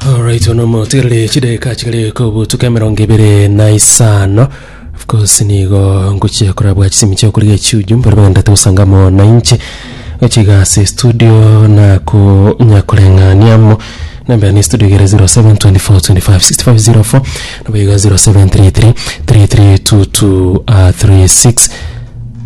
Alright, ono motigarire chideka chigare kobutuka emerongo ibere na isano of course nigo ngochia korabwa chisimi chia okoriga echiuju mbare bagenda togosanga mo na inche gochiga ase studio nako nyakoreng'aniamo nambera ne studio igere 0724256504 nabo iga 0733332236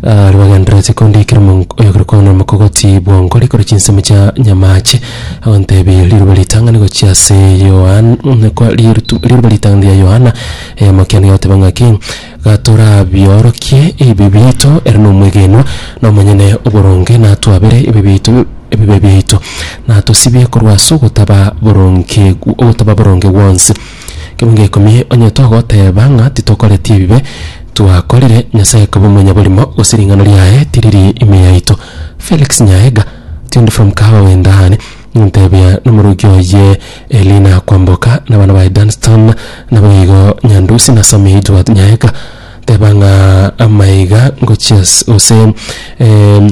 Aria bagendererete kondikera omonk- oyokire koanera omokogoti bw'onkori kore chinsemo chia nyamache, agontebie riroba ritang'ani gochia ase Yohan mm, kwa rirutu- riroba ritang'ani ria Yohana, eyamokiani gagoteba ng'aki, Gatorabiorokie ebibe biaito, ere nomwegenwa, na omonyene oboronge, natwabere ebibe biaito ebibe biaito, natosibie korwa ase ogotaba boronge gw- ogotaba boronge gwonsi. Kebunga ikomi, Onye togoteba ng'a titokoreti ebibe twakorire, Nyasae koba omonyaborimo, gose ring'ana riaye tiriri ime yaito. Felix Nyaega, tuned from Kahawa Wendani, Intebia nomorokia oye Elina Kwamboka na abana baye Dunstan naboigo Nyandusi na Sammy Edward Nyaega, teba ng'a amaiga ngochia ase gose eh,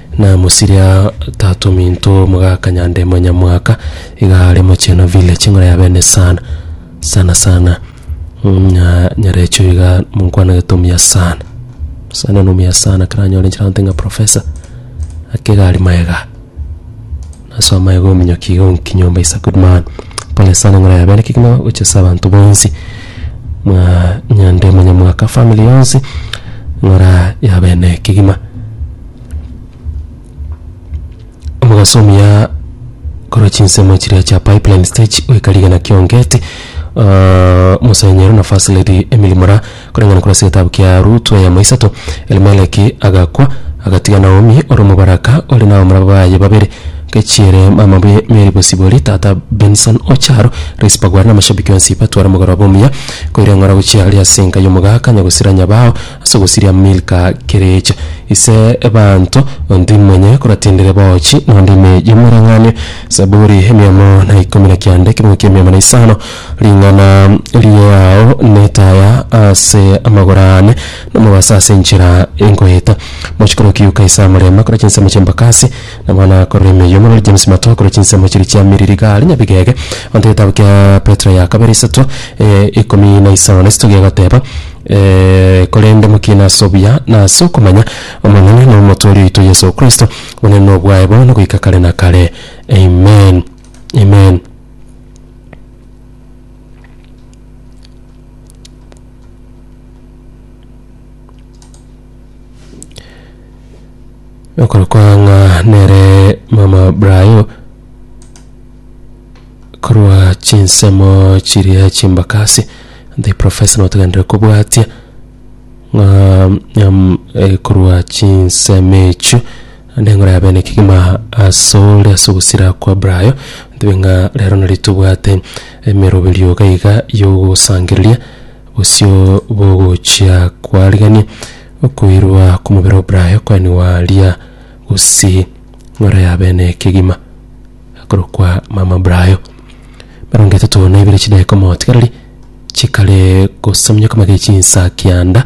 Namosire aa, tata ominto omogaka nyande monyamwaka iga are mochena ville ching'ora ya bene sana sana sana Mm, nya- nyarecho iga monkwanagete omuya sana sana nomuya sana karanyore chiranto ng'a professor akegari maega Ase omoyo bw'ominyokia iga ogokinyi omba is a good man. Pole sana ng'ora yabera ekeki na gocha ase abanto bonsi. Mwa nyande monyamwaka family yonsi ng'ora yabera na ekegima. Omogaso omuya korwa chinsemo chiria chia pipeline stage goika rigena kia Ongeti, ah, Musenyero na First Lady Emily Mura. Koreng'ana korase egetabu kia Rutu eyemo isato, Elimeleki agakwa, agatiga Naomi ore omobaraka, ore n'abamura baye babere, nkechiere mama bwe Meri bosibori, tata Benson o chiaro, Rispa gware namashabiki onsi batware omogoroba omuya, koira eng'ora gochia aria ase enka y'omogaka nyagosira nyabao ase ogosiria Milka kerecha. Ise ebanto, ontui monye koratindire boochi, nonde ime y'omoreng'anio. Zaburi emiamo na ikomi na kianda, ekerongo ki'emiamo na isano. Ring'ana riao netaya ase amagoro aane, nomobaso ase enchera enkoeta. Mochikoro o Kiyuka Isaya Murema akora chinsemo chi'embakasi, na bono akorora emeyo. Omorwoti James Mato akora chinsemo chiria chia Miriri Gari Nyabigege. Abanto egetabu kia Petero ya kabere isato, eh, ikomi na isano na isato gegoteba, eh, korende mokiine ase obuya na ase okomanya Omonene na Omotoori oito Yeso Kristo. Obonene nobwaye bono goika kare na kare. Amen, Amen. Okoro kwa ng'a nere mama Brayo korwa chinsemo chiria chimbakasi the professor notogenderera kobwatia ng'a nyam- eh, korwa chinsemo echio Naende ngore abe nekegima asore ase ogosira kwa Brayo, ntebe ng'a rero nari tobwate emeroberio iga iga y'ogosangereria bosio bw'ogochia kwarigania okoirwa kw'omobere o Brayo koenigwa aaria bosii ngore abe nekegima akorokwa mama Brayo. Emerongo etato na ibere chidaeka omotigareri chikare gosamunyokama gechinsa kianda.